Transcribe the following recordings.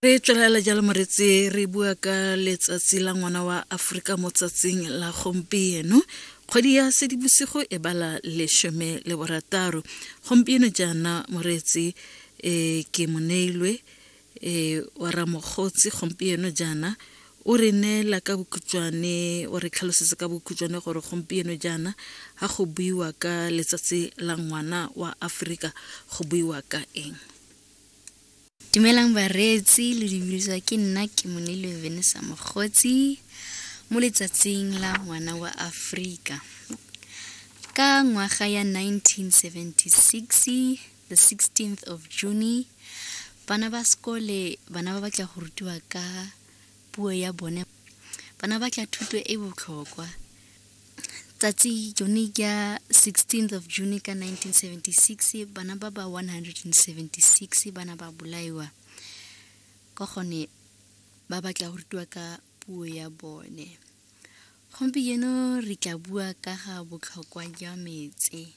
re tswelela jalo moreetse re bua ka letsatsi la ngwana wa aforika mo tsatsing la gompieno kgwedi ya sedibosigo e bala lesome le borataro gompieno jaana moreetse um ke moneilwe um wa ramokgotsi gompieno jaana O re neela ka bokhutšwane, o re tlhalosetsa ka bokhutšwane gore gompieno jaana ga go buiwa ka letsatsi la ngwana wa Aforika go buiwa ka eng. Dumelang bareetsi le dibuliswa ke nna ke monilwe Venisa Mogotsi mo letsatsing la ngwana wa Afrika ka ngwaga ya 1976 the 16th of june bana ba sekole bana ba batla go rutiwa ka puo ya bone bana ba tla thuto e botlhokwa tsatsi jone ka 16th of june ka 1976 bana ba ba 176 bana ba bolaiwa ka gone ba batla go rutiwa ka puo ya bone gompieno re tla bua ka ga botlhokwa jwa metse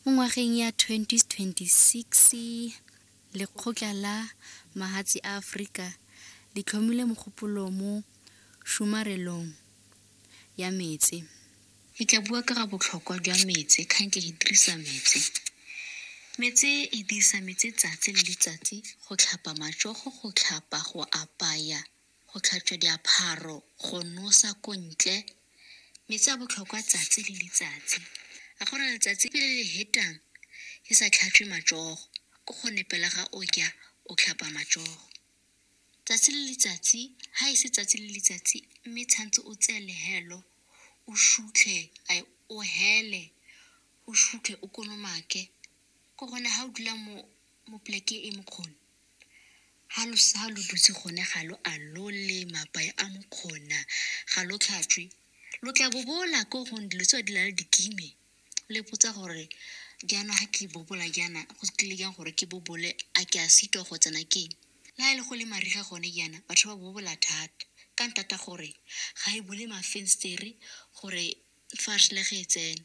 Mo ngwageng ya 2026, Lekgotla la Mahatshe a Aforika le tlhomile mogopolo mo tshomarelong ya metsi. Ke tla bua ka ga botlhokwa jwa metsi, ga nke ke dirisa metsi. Metsi, ke dirisa metsi 'tsatsi le letsatsi go tlhapa matsogo, go tlhapa, go apaya. go tlhatswa diaparo, go nosa ko ntle, metsi a botlhokwa tsatsi le letsatsi. A go na letsatsi le le hetang ke sa tlhatswe matsogo, ko go ne pela ga o ja o tlhapa matsogo. Tsatsi le letsatsi, ha e se tsatsi le letsatsi, mme tshwantse o tseye lehelo, o sutlhe, ai, o hele, o sutlhe, o kolomake. Ke gone ha o dula mo, mo poleke e mokgoni, Ha lo sa lo dutse gone ga lo a lole mapae a mokgona ga lo tlhatswe lo tla bobola ko gone dilo tse di na le dikime le ipotsa gore jaana ga ke bobola jaana go tlile jang gore ke bobole a ke a sitwa go tsena ke eng? le ga e le go le mariga gone jaana batho ba bobola thata ka ntata gore ga e bule mafenstere gore fa re sele ge e tsena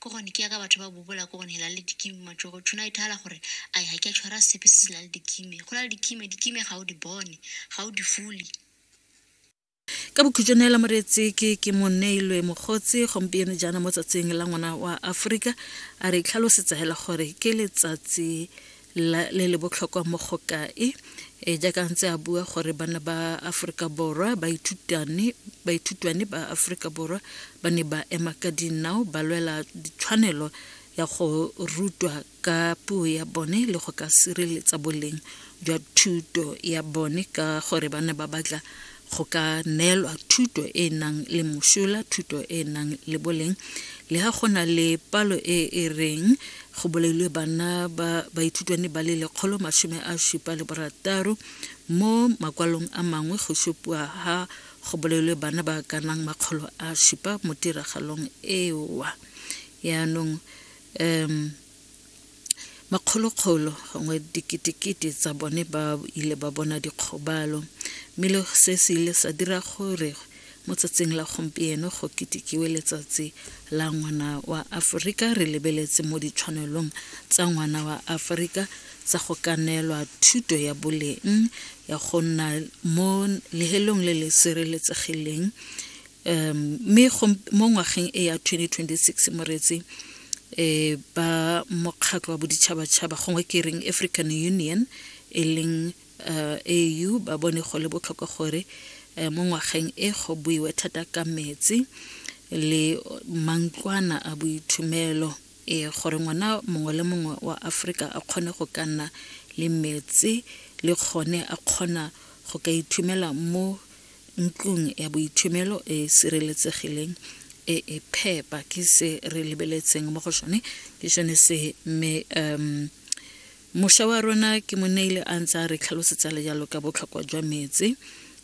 ke gone ke yaka batho ba bobola ko gone la le dikime matsogo tshwana e thala gore a ga ke a tshwara sepe se se la le dikime go la le dikime dikime ga o di bone ga o di fule ka bokhutso neela moreetsi ke ke moneilwe mokgotsi gompieno jaana mo tsatsing la ngwana wa aforika a re itlhalosetsa fela gore ke letsatsi la le le botlhokwa mo go kae e jaaka ntse a bua gore bana ba Aforika Borwa ba ithutane ba ithutwane ba Aforika Borwa ba ne ba ema ka dinao ba lwela ditshwanelo ya go rutwa ka puo ya bone le go ka sireletsa boleng jwa thuto ya bone ka gore ba ne ba batla go ka neelwa thuto e e nang le mosola thuto e e nang le boleng le ga go na le palo e e reng go bolailwe bana ba baithutwane ba le lekgolo masome a supa le borataro mo makwalong a mangwe go supiwa ga go bolailwe bana ba ka nang makgolo a supa mo tiragalong ewa yaanong um makgolokgolo gongwe diketekete tsa bone ba ile ba bona dikgobalo mme le se se ile sa dira gore mo tsatsing la gompieno go ketekiwe letsatsi la ngwana wa aforika re lebeletse mo ditshwanelong tsa ngwana wa aforika tsa go ka neelwa thuto ya boleng ya go nna mo lehelong le le sireletsegileng um mme mo ngwageng e ya 2026 moreetsi um ba mokgatlho wa boditšhabatšhaba gongwe ke reng african union e leng um au ba bone go le botlhokwa gore um mo ngwageng e go buiwe thata ka metsi le mantlwana a boithumelo um gore ngwana mongwe le mongwe wa aforika a kgone go ka nna le metsi le kgone a kgona go ka ithumela mo ntlong ya boithomelo e e sireletsegileng e e phepa ke se re lebeletseng mo go sone ke sone se mme um mošwa wa rona ke mo neile a ntse a re tlhalosetsa le jalo ka botlhokwa jwa metsi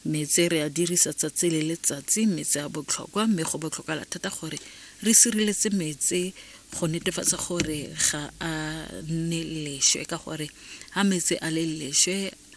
metsi re a dirisa tsatsi le letsatsi metsi a botlhokwa mme go botlhokala thata gore re sireletse metsi go netefatsa gore ga a nne lešwe ka gore ga metsi a le lešwe